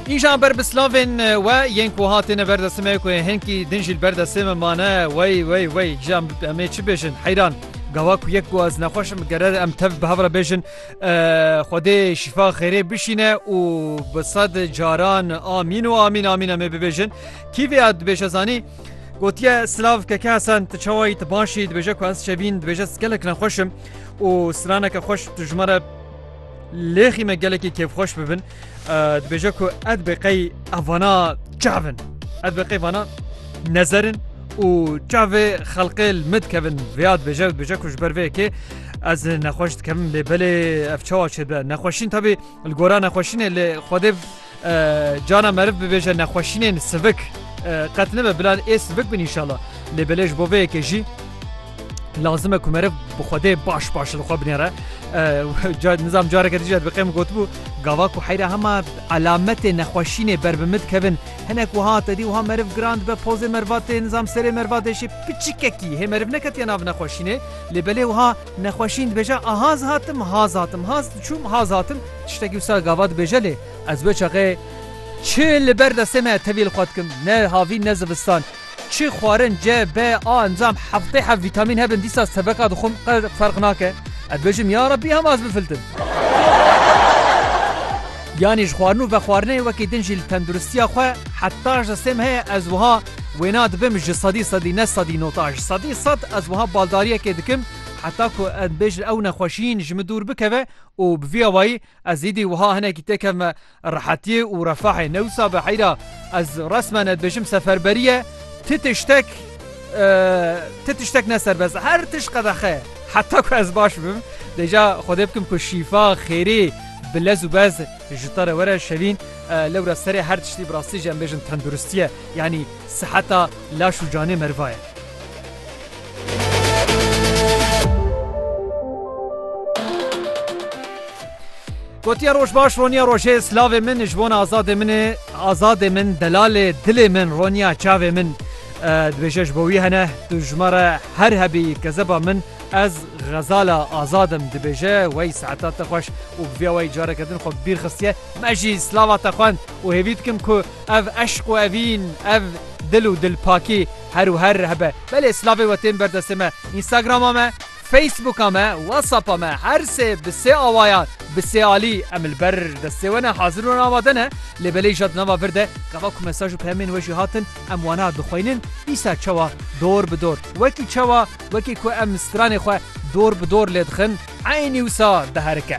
Îjan ber bi slavên we yên ku hatine ber destê me ku yên hinkî din jî li ber destê me mane wey wey wey jiyan em ê çi bêjin heyran gawa ku yek ku ez nexweş im gerer em tev bi hev re bêjin Xwedê şîfa xêrê bişîne û bi sed caran amîn û amîn amîn em ê bibêjin kîvê ya dibêje zanî gotiye silav keke hesen tu çawa yî tu baş yî dibêje ku ez çebîn dibêje gelek nexweş im û straneke xweş tu ji me re Lê xî me gelekî kêfxweş bibin dibêje ku ez bê qey evana çavin ez bê qey vana nezerin û çavê xelqê min dikevin vêya dibêje dibêje ku ji ber vê kê ez nexweş dikemin lê belê ev çawa çêbe nexweşîn tabî li gora nexweşînê lê xwedê Cana meriv bibêje nexweşînên sivik qet nibe bila ê sivik bin înşala. Lê belê ji bo vê yekê jî lazim e ku meriv bi xwedê baş baş li xwe binêre. Nizam careke dijî dibqê min gotibû gava ku heyra hema elametê nexweşînê ber bi min dikevin hinek wiha te dî wiha meriv giran dibe pozê meriva tê nizam serê meriva dê jî piçikekî hê meriv neketiye nav nexweşînê lê belê wiha Nexweşîn dibêje a hez hatim, hez hatim, hez diçûm, hez hatim, tiştekî wisa gava dibêje lê ez wê çaxê çi li ber destê me ye tevî li xwe dikim, ne havîn ne zivistan. Çi xwarin C, B, A encam heftê heft vîtamîn hebin dîsa seveka dixwim qet ferq nake. Ez dibêjim ya Rabbî hema ez bifiltim. Yanî ji xwarin û vexwarinê wekî din jî li tenduristiya xwe heta ji destê me heye ez wiha Wêna dibim ji sedî sedî ne sedî nota ji sedî sed ez wiha baldariyekê dikim heta ku em bêjin ew nexweşiyîn ji min dûr bikeve û bi vî awayî ez îdî wiha hinekî tê kevme rehetiyê û refahê ne wisa be heyra ez resmen ez dibêjim seferberî ye ti tiştek ti tiştek ne serbest e her tişt qedexe ye heta ku ez baş bim dêja xwedê bikim ku şîfa xêrê bi lez û bez Ji te re were Şevîn, lewra serê her tiştî bi rastî jî em bêjin tenduristî ye, yanî siheta laş û canê meriva ye. Gotiye roj baş roniya rojê silavê min ji bona azadê min ê azadê min delalê dilê min roniya çavê min dibêje ji bo wî hene tu ji me re her hebî kezeba min Ez xezala azad im dibêje wey saeta te xweş û bi vîya wey careke din xwe bi bîr xistiye me jî slava te xwend û hêvî dikim ku ev eşq û evîn ev dil û dilpakî her û her hebe belê slavê we tên ber destê me Instagrama me Facebooka me Whatsapp'a me her sê bi sê awayan bi sê alî em li ber destê we ne hazir û amade ne lê belê îja di nava vir de gava ku mesaj û peyamên we jî hatin em wana dixweynin dîsa çawa dor bi dor wekî çawa Wekî ku em stranê xwe dor bi dor lê dixin, eynî wisa diherike.